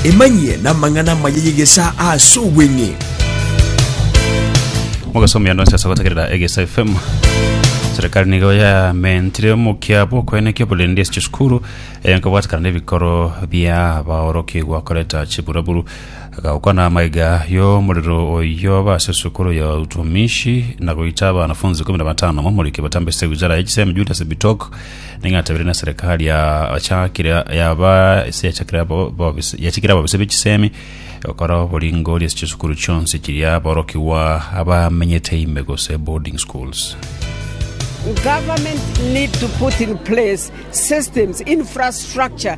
Emanyie namang'ana amaya y'egesaa ase obweng'e. mogasomia nonsi ase gotegerera egesa fm serikali nigo yamentire omokia bw'okoenekia oborendi ase chisukuru eh, nkobwatekana n'ebikoro bia abaorokigwa koreta chiburaburu agakwana amaiga y'omorero oyo base sukuru ya utumishi na goita abanafunzi kumi na batano momoriki batambesete wizara ya chisemi julius bitok Ning'o atabire na serikali yachakire yaba ase yachakire abo- bobis- yachikire ababisa b'echisemi gokora oboringori ase chisukuru chionsi chiria aborokigwa abamenyete ime gose boarding schools. Government need to put in place systems, infrastructure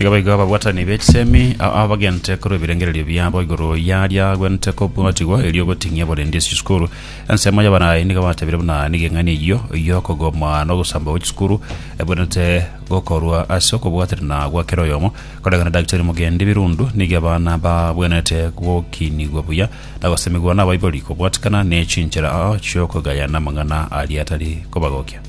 Iga baigo ababwatani be chisemi ao abagente korwa ebirengererio biabo igoro yaria agwenerete kobwatigwa erio ogoting'ia borende ase chisukuru. Ensemo y'abanaye nigo batebire buna nigo eng'ani eyio y'okogoma na ogosamba gwe chisukuru ebwenerete gokorwa ase okobwaterana gwa kera oyomo. Koreng'ana na Daktari Mugendi Birundu, nigo abana babwenerete gokinigwa buya na gosemigwa nabaibori kobwatikana ne chinchera chi'okogayana amang'ana aria atari kobagokia.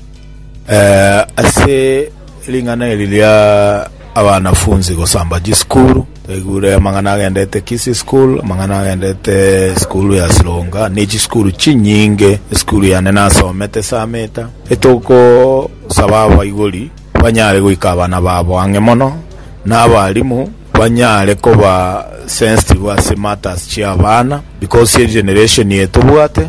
Ase ring'ana eri ria abanafunzi gosamba chisukuru, twaigure amang'ana agendete Kisii School, amang'ana agendete esukuru ya Sironga, ne chisukuru chinyinge, esukuru yane nasomete Sameta, etogosaba abaibori banyare goika abana babo ang'e mono, na abalimu banyare koba sensitive ase matters chi'abana because egeneration eye tobwate.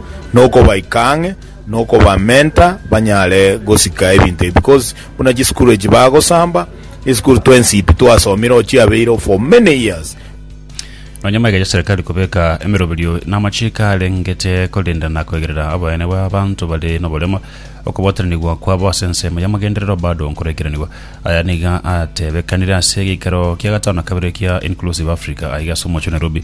nokobaika ang'e, nokobamenta banyare gosika ebinto ebi, because buna chisukuru echi bagosamba, esukuru twensi pi twasomire oo chiabeire oo for many years. Nonya maiga ya Serikali kobeka emeroberio na amachiko arengete korenda na koigerera oboyene bwa abanto bare noboremo, okobwataranigwa kwabo ase ensemo y'amagenderero bado nkoraikeranigwa. Aya niga atebekanire ase egeikero kia gatano na kabere kia Inclusive Africa aiga ase omochie o Nairobi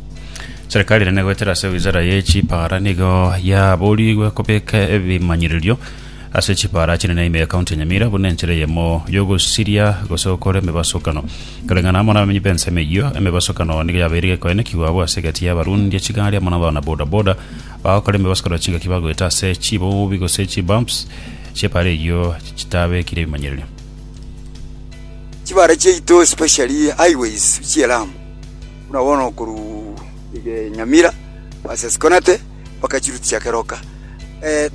Serikali nene goetera ase wizara ye chipara nigo yaborigwe kobeka ebimanyererio ase chipara chinene ime ya kaunti ya Nyamira buna enchera eyemo yogosiria gose gokora emebasokano. Koreng'ana amo nabamenyi b'ensemo eyio, emebasokano nigo yabeire gekoenekigwa abwo ase egati y'abarundi chigari amo nabana bodaboda bagokora emebasokano chingaki bagoeta ase chibobi gose chibumps chiepara eyio chitabekire ebimanyererio. Chibara chiaito especially highways chi'Elamu. Buna bono korwa Nyamira baase Sikonate mpaka chiruti chia Keroka,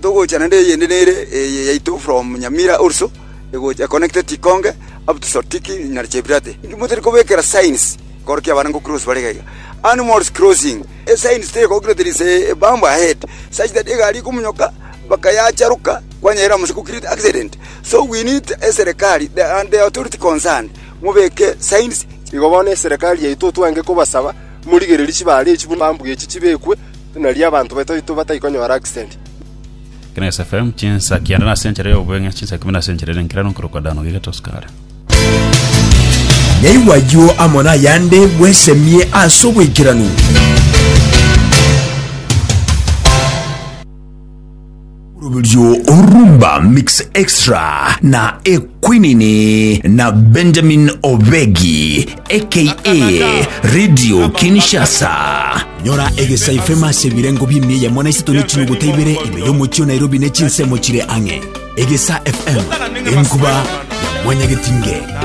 togocha naende eyende nere eye yaito from Nyamira also egocha econnected Ikonge up to Sotiki na Chebirate. Inki motari kobekera signs ekero kia abana ngocross bare iga iga? Animals crossing, esigns teri kobekirwe there is a bump ahead such that egari ekomonyoka mpaka yacharoka kwanyerera amo ase gokireti accident, so we need eserekari and the authority concerned. mobeke signs. Igo bono eserekari yaito twange kobasaba morigererie chibare echi buna mambwe echi chibekwe, nario abanto baito batai konyora accident. Kinaga SFM chinsa kianda nase enchera y'obobeng'ina chinsa ikomi nase enchera ere nkerero nkorokwa Dano iga tosukare. Nyaigwa ayio amo nayande bwesemie ase oboikeranu. Oroberio Rumba Mix Extra na Ekwinini na Benjamin Obegi aka Radio Kinshasa. Nyora egesaifema ase ebirengo bi'emiya yamo na isato ne chinuguta ibere ime y'omochie o Nairobi ne chinsemo chire ang'e. Egesa FM, enkuba ya mwanyagetinge.